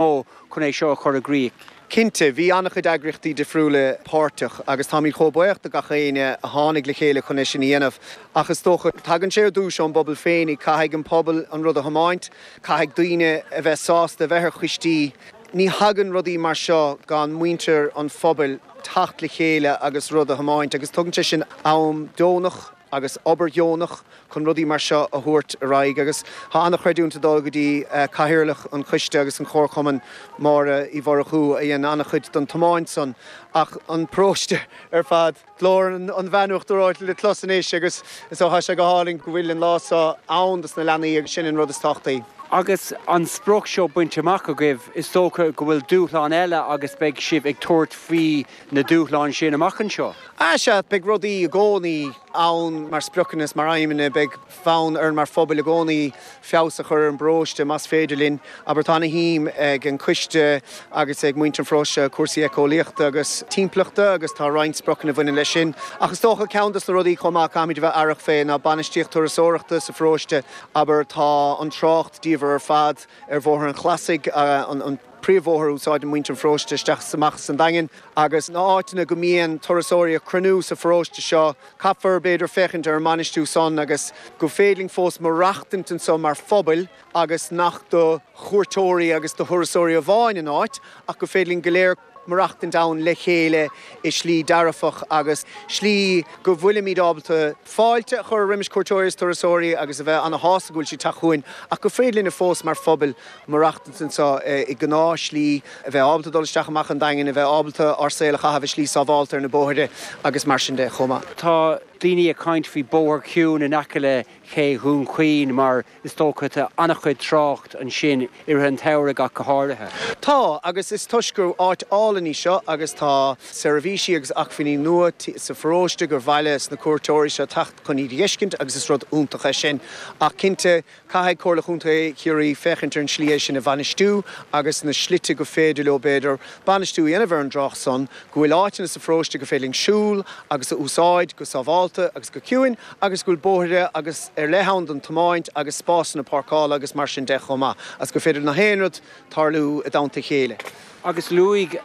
mó chun é seo a chur i gcrích. Cinnte, bhí an-chuid eagraíochtaí difriúla páirteach agus táimid chomh buíoch do gach éinne a tháinig le chéile chun é sin a dhéanamh. Ach is dócha, tagann sé ar dtús ón bpobal féinig, caithfidh an pobal an rud a thiomáint, caithfidh daoine a bheith sásta a bheith ar choistí. Ní thagann rudaí mar seo gan muintir an phobail teacht le chéile agus rud a thiomáint agus tógann sé sin am deonach. agus obair dheonach chun rudaí mar seo a thabhairt ar aghaidh agus tá an-chreidiúint ag dul go dtí Cathaoirleach an choiste agus an Chomharchumainn, Máire Uí Mhurchú, a dhein an-chuid don tiomáint san ach an paróiste ar fad. Glór an bhainne uachtar reoite le clos anois agus ó tá sé go hálainn go bhfuil an lá so ann dos na leanaí agus sin an rud is tábhachtaí. Agus an sprioc seo bainte amach agaibh, is dócha go bhfuil dúshlán eile agus beidh sibh ag tabhairt faoi na dúshláin sin amach anseo? Ah sea, beidh rudaí i gcónaí ann mar spriocanna is mar aidhmeanna. Beidh fonn orainn mar phobal i gcónaí feabhas a chur ar an bparóiste más féidir linn. Abair tá ana shuim ag an coiste agus ag muintir an pharóiste cúrsaí éiceolaíochta agus timpeallachta agus tá roinnt spriocanna a bhaineann leis sin. Ach is dócha ceann dos na rudaí chomh maith a chaithfimid a bheith aireach fé ná bainistíocht turasóireachta sa pharóiste. Abair tá an trácht diamhar ar fad ar Bhóthar an Chlasaigh, an. príomhbhóthar a úsáideann muintir an pharóiste isteach is amach as an Daingean, agus na áiteanna go mbíonn turasóirí ag cruinniú sa pharóiste seo. Caithfear, b'fhéidir, féachaint ar an mbainistiú san, agus gur féidir linn fós maireachtaint anso mar phobal, agus nach do chuairteoirí agus do thurasóirí amháin an áit, ach gur féidir linn go léir maireachtaint ann le chéile i slí dearfach, agus slí go bhfuilimid ábalta fáilte a chur roimis cuairteoirí is turasóirí agus a bheith ana shásta go bhfuil siad teacht chughainn, ach gur féidir linne fós mar phobal, maireachtaint anseo i ngnáth slí, a bheith ábalta dul isteach amach an Daingean, a bheith ábalta ár saol a chaitheamh i slí sábhálta ar na bóithre agus mar sin de chomh maith. Tá daoine ag caint faoi bóthar ciúin in aice le Cé Dhún Chaoin mar is dócha tá an-chuid trácht ansin i rith an tsamhraidh ach go háirithe. Tá, agus is toisc gur áit álainn í seo agus tá seirbhísí agus acmhainní nua sa pharóiste gur mhaith le na cuairteoirí seo teacht chun iad a dh'fheiscint agus is rud iontach é sin ach cinnte Caithfidh Comhairle Chontae Chiarraí féachaint ar an tslí é sin a bhainistiú agus na slite gur féidir leo, b'fhéidir, bainistiú a dhéanamh ar an dtrácht san, go bhfuil áiteanna sa pharóiste gur féidir linn siúl agus a úsáid go sábhálta agus go ciúin agus go bhfuil bóithre agus ar leith ann don tiomáint agus spásanna páirceála agus mar sin de chomh maith agus gur féidir le haon rud tarlú i dteannta a chéile. Agus luaigh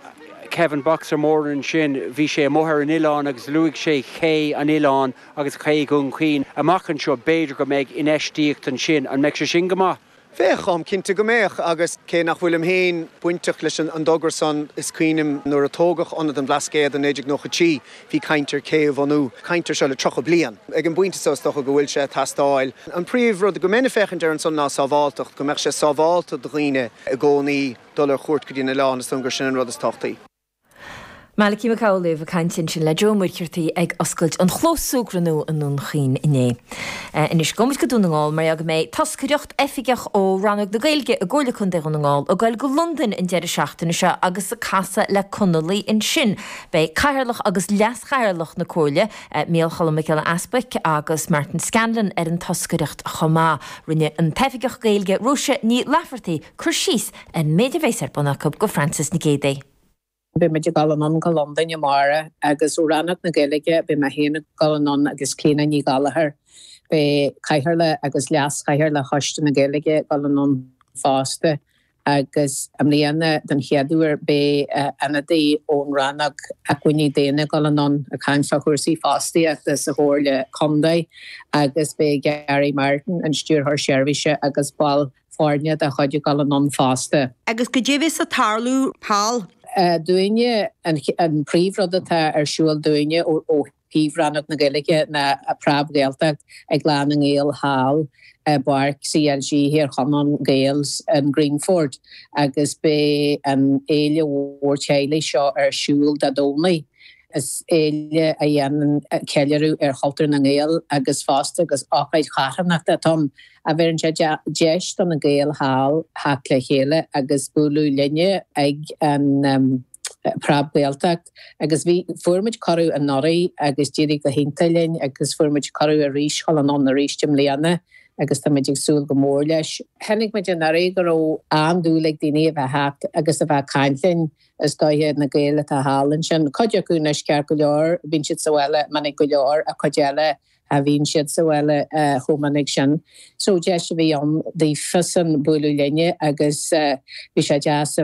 Kevin Boxer Moran ansin, bhí sé amuigh ar an oileán agus luaigh sé cé an oileáin agus Cé Dhún Chaoin amach anseo, b'fhéidir go mbeidh infheistíocht ansin. An mbeadh sé sin go maith? Bheadh, táim cinnte go mbeadh, agus cé nach bhfuilim féin bainteach leis an dtogra san, is cuimhin liom nuair a tógadh Ionad an Bhlascaoid i 1993, bhí caint ar cé a bhunú, caint air seo le 30 bliain. Ag an bpointe so, is dócha go bhfuil sé ag teastáil. An príomh rud go mbeinn ag féachaint air ansan ná sábháltacht, go mbeadh sé sábhálta do dhaoine i gcónaí dul ar chuairt go dtí an oileán, is dóigh liom gur sin an rud is tábhachtaí. Malachy Mac Amhlaoibh ag caint ansin le Joe Ó Muircheartaigh ag oscailt an chlós súgradh nua i nDún Chaoin inné. Anois gabhfaidh muid go Dún na nGall mar gheall go mbeidh toscaireacht, oifigeach ó Rannóg na Gaeilge i gComhairle Contae Dhún na nGall, ag goil go Londain an deireadh seachtaine seo agus ag casadh le Conallaigh ansin. Beidh Cathaoirleach agus Leas-Chathaoirleach na Comhairle, Micheál Cholm Mac Giolla Easbuic agus Martin Scanlon ar an toscaireacht chomh maith. Rinne an t-oifigeach Gaeilge Róise Ní Laifeartaigh cur síos an méid a bheas ar bun acu do Frances Nic Géadaigh. Beidh muid ag dul anonn go Londain amárach agus ó Rannóg na Gaeilge beidh mé féin ag dul anonn agus Clíodhna Ní Ghallachair. Beidh Cathaoirleach agus Leas-Chathaoirleach Choiste na Gaeilge ag dul anonn fosta agus i mbliana den chéad uair beidh ionadaí ón Rannóg Acmhainní Daonna ag dul anonn ag caint fá chúrsaí fostaíochta sa Chomhairle Contae agus beidh Garry Martin, an Stiúrthóir Seirbhíse agus baill foirne dá chuid ag dul anonn fosta. Agus caidé a bheas ag tarlú thall? dúinne, an príomhrud atá ar siúl dúinne ó thaobh Rannóg na Gaeilge ná Preab-Ghaeltacht i gClann na nGael thall i bPáirc CLG Thír Chonaill Gaels in Greenford, agus beidh an fhéile mhór teaghlaigh seo ar siúl Dé Domhnaigh. Is féile a dhéanann ceiliúradh ar chultúr na nGael agus fosta agus ócáid charthanachta atá ann a bheireann sé deis do na Gaeil thall theacht le chéile agus bualadh linne ag an bPreab-Ghaeltacht. Agus bhí, fuair muid cuireadh anuraidh agus d'éirigh go hiontach linn agus fuair muid cuireadh arís, dhul anonn arís i mbliana agus tá muid ag súil go mór leis. Chonaic muid anuraidh go raibh an-dúil ag daoine a bheith theacht agus a bheith ag caint linn. Is dóiche iad na Gaeil atá thall ansin. Cuid acu anois ceart go leor, bíonn siad sa bhaile minic go leor, ach cuid eile cha bhíonn siad sa bhaile chomh minic sin. So deis a bhí ann daofasan bualadh linne agus bhí sé deas a